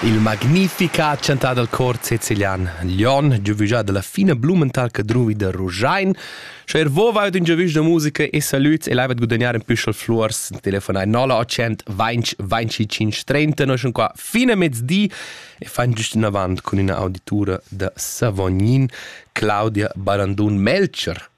Il magnifica chantà dal cor sicilian Lion, giovügià da la fina blumental cadruvi da Ruschein. Sche er vo vaud ün giovüsch da musica e salüds e laivat guadagnar ün püschel fluors, telefonai 0900 20 25 30. Noi sun qua fin a mezdi e fan giust inavant cun üna auditura da Savognin, Claudia Barandun-Melcher.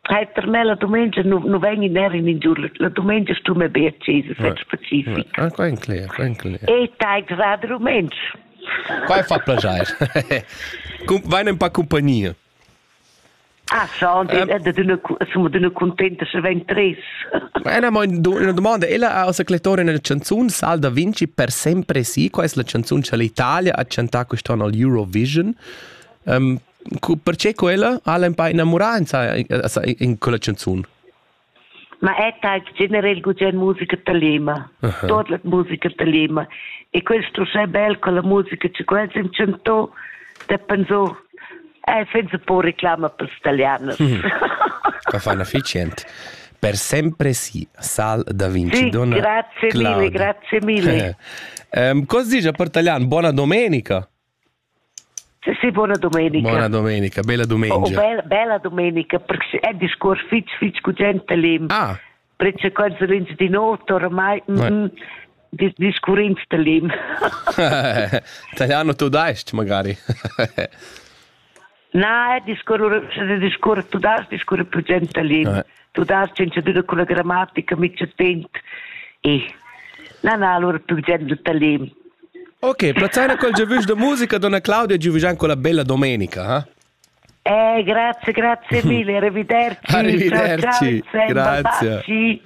Trais termella dumengia nu, nu vegn ner in ingiur. La dumengia stun me be accesa, fetg specific. Ah, quai è clear, quai è clear. E tai grad rumentsch. Quai fa plagiar. Vain un pa compagnia. Ah, schon, sono d'una contenta se veng tres. Ma è una domanda, ella ha osacletore nella canzone Salda Vinci per sempre sì, questa è la canzone che l'Italia ha chantato quest'anno al Eurovision. Um, perché quella ha empau innamurà in quella canzun? Ma è tag general gugent musica da Lema, uh -huh. tot la musica da Lema. E questo è bel con la musica che quels im canto, da pensò, è senza po reclama per staglianas. Mm. Fa fa efficient. Per sempre sì, Sal da Vinci. Sì, donna grazie Claudia. mille, grazie mille. um, cosa dice a Portagliano? Buona domenica. Sì, buona domenica. Buona domenica, bella domenica. Oh, bella, bella domenica, perché è un discorso fitch, fitch cu gente lì. Ah. Perché quando ins di notte oramai... Mm, mm, discurrins da lim. Italiano tu daist magari. Na, discurre, se discurre, tu das discurre più gentalin, eh. tu das cincedüna con la grammatica mica tent. E, na, na, allora più gentalin. Ok, Plazzana col giovus de musica, donna Claudia giuvigian con la bella domenica, eh? Eh, grazie, grazie mille, arrivederci. arrivederci, ciao, ciao, grazie.